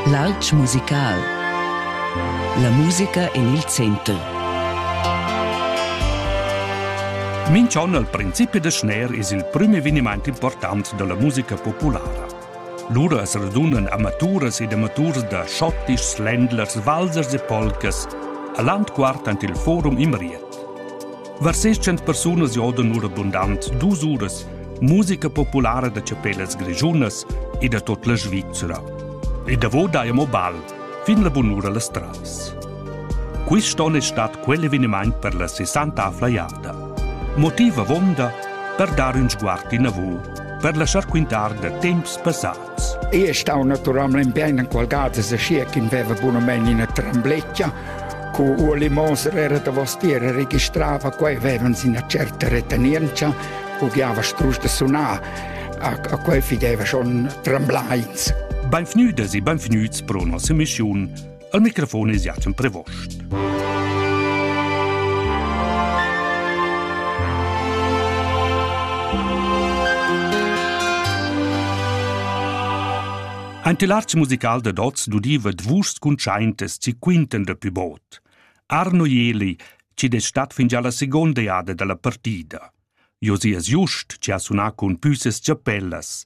L'altg musical. La musica en il center. Minch'on al principi da schner es il prüm evenimaint important da la musica populara. Lura as radunan amaturas ed amaturs da schottischs, ländlers, valsers e polcas a l'antquart ant il forum Imriet. Var 600 persunas jodan ora bundant dus uras musica populara da chapellas grischunas e da tot la Svizzera. E davo daia mo bal, fin la bunura las trais. Quist on è stat quell'eveniment per la 60 flaiada. Motiv avonda per dar un sguard inavù, per lasciar quintar da temps passats. Io stau naturalmein bein enqualgada sachia ch'in veva bunamein ina trembletgia. Cu Ueli Moser era davostier e registrava quei, vevans ina certa retenientscha, bugliava strusch da sunar. A, a quei fideva schon tremblai. Beinvgnüdas e beinvgnüts pro nossa missiun. Al microfon es Jacen Prevost. Ein tilarz musical de dots dudiva dvus cuntschaintes ci quinten de pü bot. Arno Jeli ci det stat fin già la seconda jada dalla partida. Josias Just ci ha sunà cun püses chapellas.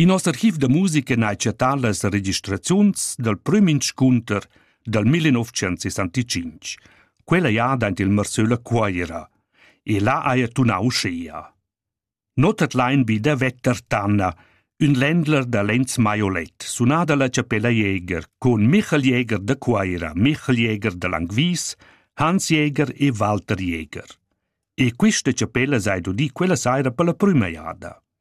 In noss archiv da musica n'ha chattà las registraziuns dal prüm inscunter dal 1965, quella jada aint il Marsöl a Cuaira, e là haja tunà uschea. Not at lain be da Vetter Tanna, ün ländler da Lenz Maiolet, sunà dalla Chapella Jäger, con Michael Jäger da Cuaira, Michael Jäger da Langwies, Hans Jäger e Walter Jäger. E quista chapella s'ha udì quella saira per la prüma jada.